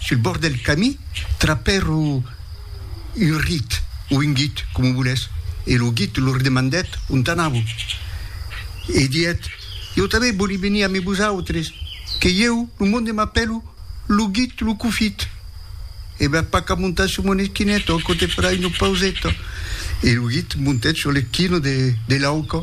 Sul bòrd del camí trapèro un rit o un guit, coma volètz, e lo guit lor demandèt ont anàvo. E didèt, Ieu tanben vòli venir amé vosautres, que ieu, lo monde m'apèlo lo guit lo cofit. E va pas qu'a montar sul mon esquineto, aquò te farà una pauseta. E lo guit montèt sul l'esquino de l'auca.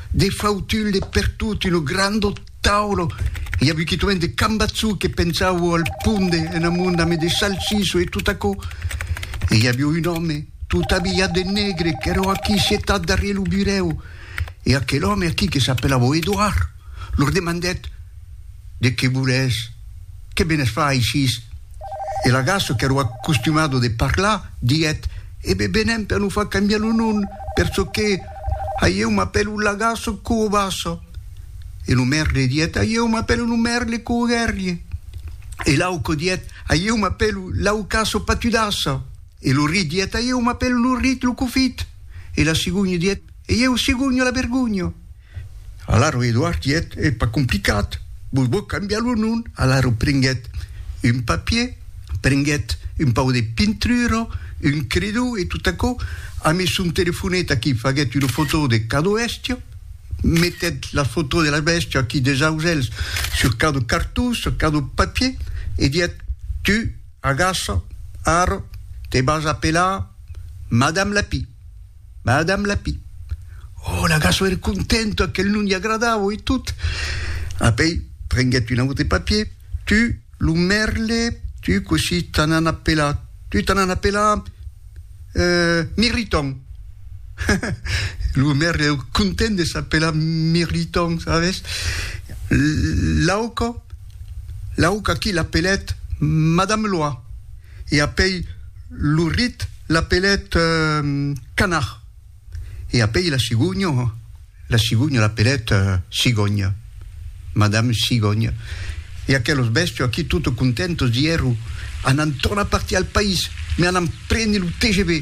De fautull de pertot ino grando tauro i a buquitoen de cambatzou que pensavo al ponde en amont dame de salsiso e tot aquò e i avio un òme tot abilhat de negre qu'eró aquí sietat darrier lo burèu e aquel òme aquí que s'apelavo Edouard lor demandèt De qué voles? Qué venes far aichís? E l'agasso qu'èro acostumado de parlar, diguèt, E be venem per nos far cambiar lo nom, per çò que Aieu m'apèlo l'agasso coo basso. E lo merle diguèt, Aieu m'apèlo lo merle coo guèrrie. E l'auco diguèt, Aieu m'apèlo l'aucasso patudasso. E lo rit diguèt, Aieu m'apèlo lo rit lo cofit. E la cigogna diguèt, E ieu cigogno la vergogno. Alaro Eduard diguèt, Ei pas complicat, vos vòl cambiar lo nom. Alaro prenguèt un papier, prenguèt un pauc de pintura, un credó e tot aquò, amès son telefonet aquí faguèt una fotó de cada bèstia, metèt la fotó de la bèstia aquí deus ausèls sur cada cartó, sur cada papier e diguèt, Tu, agaça, ara, te vas apelar Madame Lapí. Madame Lapí. Oh, la gasso ère contenta qu'el non li agradava e tot. Apèi prenguèt un aute papier, Tu, lo mèrle, tu cossí t'an an apelar? Tu t'an an apelar Mirriton. Lo mèrle ère content de s'apelar Mirriton, sabes? L'auca, l'auca qui l'apelèt Madame Loa. e apèi lo rit l'apelèt canard, e apèi la cigogna, la cigogna l'apelèt cigònha, madame cigònha, e aquelos bèstia aquí tot contentos dierro, Anam tornar partir al país, me anam prene lo tgv.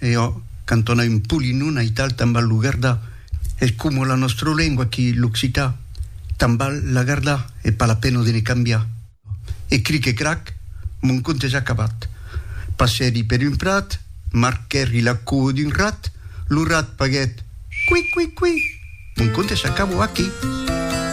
E ò, cantona un polinon aital tan bal lo gardar, es coma la nòstra lengua aquí, l'occitan, tan bal la gardar, e pas la pena de ne cambiar. E cric e crac, mon conte es acabat. Passèri per un prat, marquèri la coa d'un rat, lo rat paguèt, Qui, qui, qui! Mon conte s'acabò aquí.